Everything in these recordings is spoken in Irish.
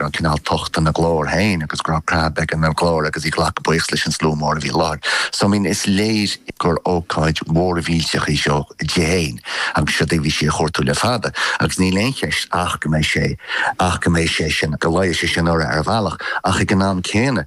raibh cineál tocht ina glór féin agus go raibh creathadh ina glór agus í ag glacadh buíochas leis an slua mór a bhí i láthair. So I mean is léir gur ócáid mhór mhillteach í seo di féin agus seo é a bhí sí a chuartú le fada agus níl aon cheist ach go mbeidh sé ach go mbeidh sé sin go bhfaighidh sé sin urra ar bhealach ach ag an am céanna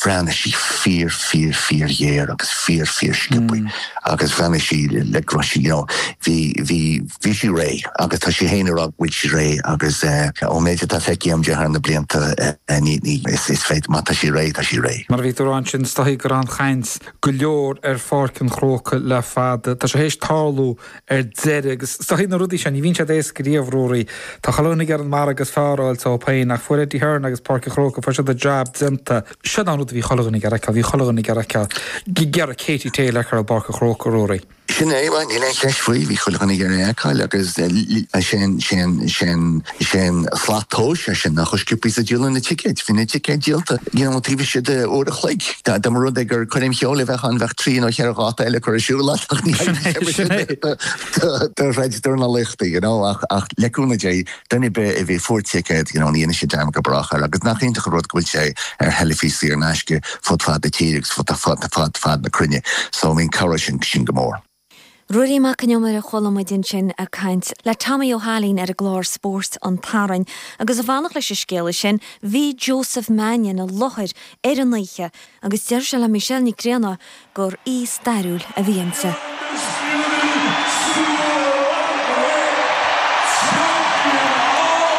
bhreathnaigh sí fíor fíor fíor ghéar agus fíor fíor sciobtha agus bhreathnaigh sí like go raibh sí, you know, bhí, bhí, bhí sí réidh agus tá sí fhéin ag rá go bhfuil sí réidh agus eh, ón méid atá feicthe agam di thar na blianta eh, ní, ní, is, is féidir, má tá sí réidh, tá sí réidh. Mar a bhí tú ag rá ansin is dóichí go raibh an-chaint go leor ar Pháirc an Chrócaigh le fada. Tá sé théis tarlú ar deireadh. Agus is dóichí na rudaí seo, ní bhíonn siad éasca riamh, Ruairí. Tá chuile dhuine ag iarraidh an babhta is fearr a fháil dóibh féin. Ach fuair Eddie Hearn agus Páirc an Chrócaigh, fuair siad an jab déanta. Sin an rud a bhí chuile dhuine ag iarraidh a fheiceáil, bhí chuile dhuine ag iarraidh a fheiceáil ag iarraidh Katie Taylor i bPáirc an Chrócaigh, Ruairí. Sin é, níl aon cheist faoi, bhí chuile dhuine ag iarraidh a fheiceáil agus sé an, sé an, sé an, Is é an slat tomhais é sin, ná chomh sciobtha is a díoladh na ticéid. Bhí na ticéid díolta you know taobh istigh de uair a chloig. Dá mba rud é gur coirm cheoil a bheadh ann bheadh trí nó cheithre dháta eile curtha ar siúl ach ní Sin é, sin é. do throid dornálaíochta you know. Ach ach le cúnamh Dé duine ar bith a bhí, a fuair ticéad you know ní dhéanfaidh sé dearmad go brách air. Agus nach iontach an rud go bhfuil sé ar theilifís saor in aisce fud fad na tíre agus fud fad fad fad na cruinne. So I mean cabhróidh sé sin go mór. Ruairí Mac Con Iomaire a chuala muid ansin ag caint le Tommy Ó hAilín ar an gclár Spóirt an tSathairn agus ag fanacht leis an scéala sin bhí Joseph Mannion i láthair ar an oíche agus deir sé le Michelle Nic Grianna gur oíche stairiúil a bhí inti.